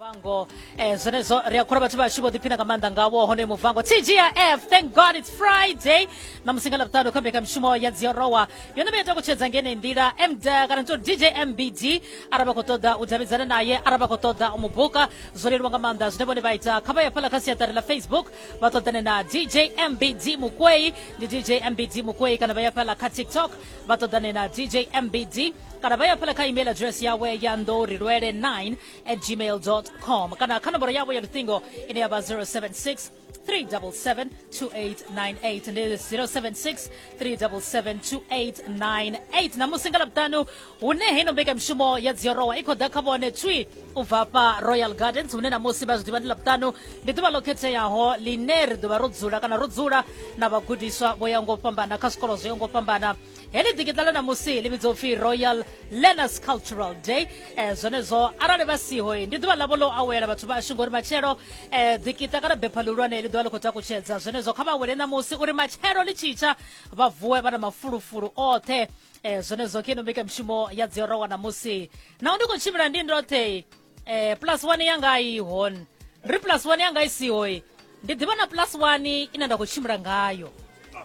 muvango eh, zwenezwo ri a khura vhathu vhashu vho ḓiphina nga maanḓa ngawo hone muvango tgf thank god it's friday na musi nga lavhuṱanu kha mbekamishumo ya dziorowa yone vha ita kutshedza ngenei nḓila md kana to dj mbd arali vha khou ṱoḓa u davhidzana naye arali vha khou ṱoḓa u mu buka zwo leluwa nga maanḓa zwine vhone vha ita kha vha ya fhala kha siaṱari la facebook vha ṱoḓane na dj mbd mukwei ndi dj mbd mukwei kana vha ya fhala kha tiktok vha ṱoḓane na dj mbd kana vha ya fhela kha email address yawe ya nḓorilwele 9 at gmail com kana kha nomboro yavho ya luṱingo ine ya vha 076 377 2898 ndi 076 377 2898 na musi nga lavhuṱanu hune heino mbekamishumo ya dziorowa i khou ḓa kha vhone tswi u bva hafha royal gardens hune na musi vha zwi ḓivha ndi ḽavhuṱanu ndi ḓuvha ḽo khetheaho ḽine ri ḓovha ro dzula kana ro dzula na vhagudiswa vho ya ngo fhambana kha zwikolo zwo ya ngo fhambana heḽi ḓikiṱa ḽa ṋamusi ḽi vhidzwa upfi royal learners cultural day um zwenezwo arali vha siho ndi ḓuvha ḽavho ḽo awela vhathu vhashu ngori matshelo um eh, ḓikiṱa kana bepha ḽihulwane ḽi ḓovha ḽi khou takutshedza zwenezwo kha vha awele ṋamusi uri matshelo ḽi tshitsha vha vuwe vha na mafulufulu oṱhe eh, zwone zwo khe no mbekanyamushumo ya dzi orowa ṋamusi naho ndi khou tshimbila ndi ndoṱhe eh, plus one yanga i hone ri plus one yanga i sihoe ndi ḓivha na plus one ine nda khou tshimbila ngayo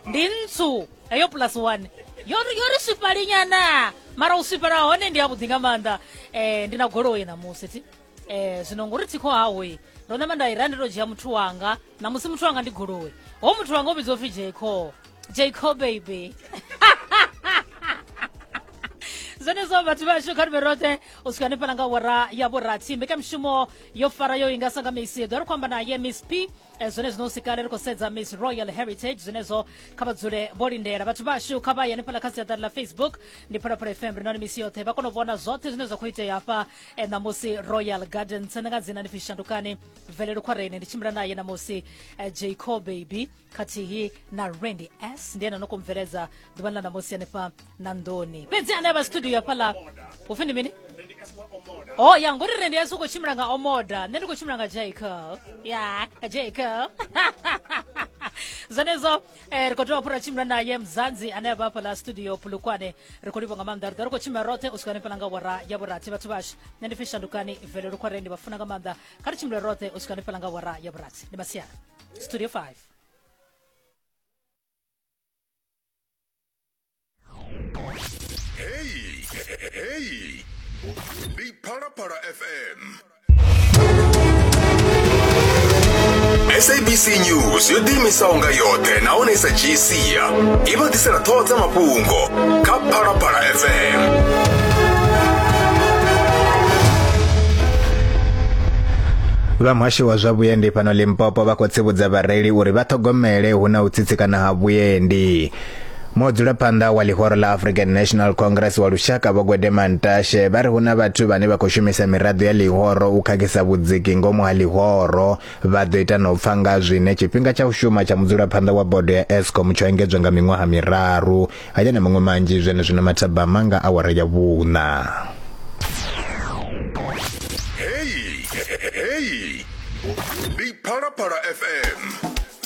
ndi ntsu heyo plus one yo ri yo ri swifhalinyana mara u swifhala hone ndi yavhuḓi nga maanḓa eh, ndi na goloi ṋamusi thi eh zwino ngori thikho hawe ndo namba nda i ra ndi to dzhia muthu wanga na musi muthu wanga ndi goloi ho muthu wanga o vhidzwa upfi jco jco baby zwenezwo vhathu vhashu kha rive roṱhe u swika hanefhala nga wara ya vhurathi mbekamishumo yo fara yo inga sa nga misi ḓo ri khou amba naye miss p eh, zwone zwino u sikale ri khou sedza miss royal heritage zwenezwo kha vha dzule vho lindela vhathu vhashu kha vha ye hanefhala kha siaṱari ḽa facebook ndi phalaphala fm ri noni misi yoṱhe vha kona u vhona zwoṱhe zwine zwa khou itea hafha e ṋamusi royal gardens ndi nga dzina ndi pfi shandukani mvelelo khwarene ndi tshimbila naye ṋamusi eh, jacob baby khathihi na randy s ndi ene no khou mveledza ḓuvhani ḽa ṋamusi hanefha na nḓoni fhedzi ane avha studio ya fhaḽa upfi ndi mini o ya ngori rendi s u khou tshimbila nga omoda nṋe ndi khou tshimbila nga jacob ya jacob zwenezwo Eh, ri khou tea fhura tshimbila naye mzanzi ane a vha fhala studio pulukwane ri khou livha nga maanḓa ri ḓo ri khou tshimbila roṱhe u swika hanefhala nga wara ya vhurathi vhathu vhashu nṋe ndi pfi shandukani vele lukhware ndi vha funa nga maanḓa kha ri tshimbile roṱhe u swika hanefhala nga wara ya vhurathi ndi masiara studio 5 Hey, hey, Big Para Para FM. sabc news yo ḓiimisaho nga yoṱhe nahone i sa dzhii sia i vha ḓisela ṱhoho dza mafhungo kha phalaphala fm vha muhasho wa zwa vhuendi fhano limpopo vha khou tsivhudza vhareili uri vha ṱhogomele hu na u tsitsikana ha vhuendi mudzulaphanḓa wa ḽihoro ḽa african national congress wa lushaka vho gwedema ntashe vha ri hu na vhathu vhane vha khou shumisa miraḓo ya ḽihoro u khakhisa vhudziki ngomu ha ḽihoro vha ḓo ita na u pfa nga zwine tshifhinga tsha u shuma tsha mudzulaphanḓa wa bodo ya escom tsho engedzwa nga miṅwaha miraru haya na maṅwe manzhi zwenezwino mathabama nga awara ya vhuṋa heyi heyi ndi phalaphala fm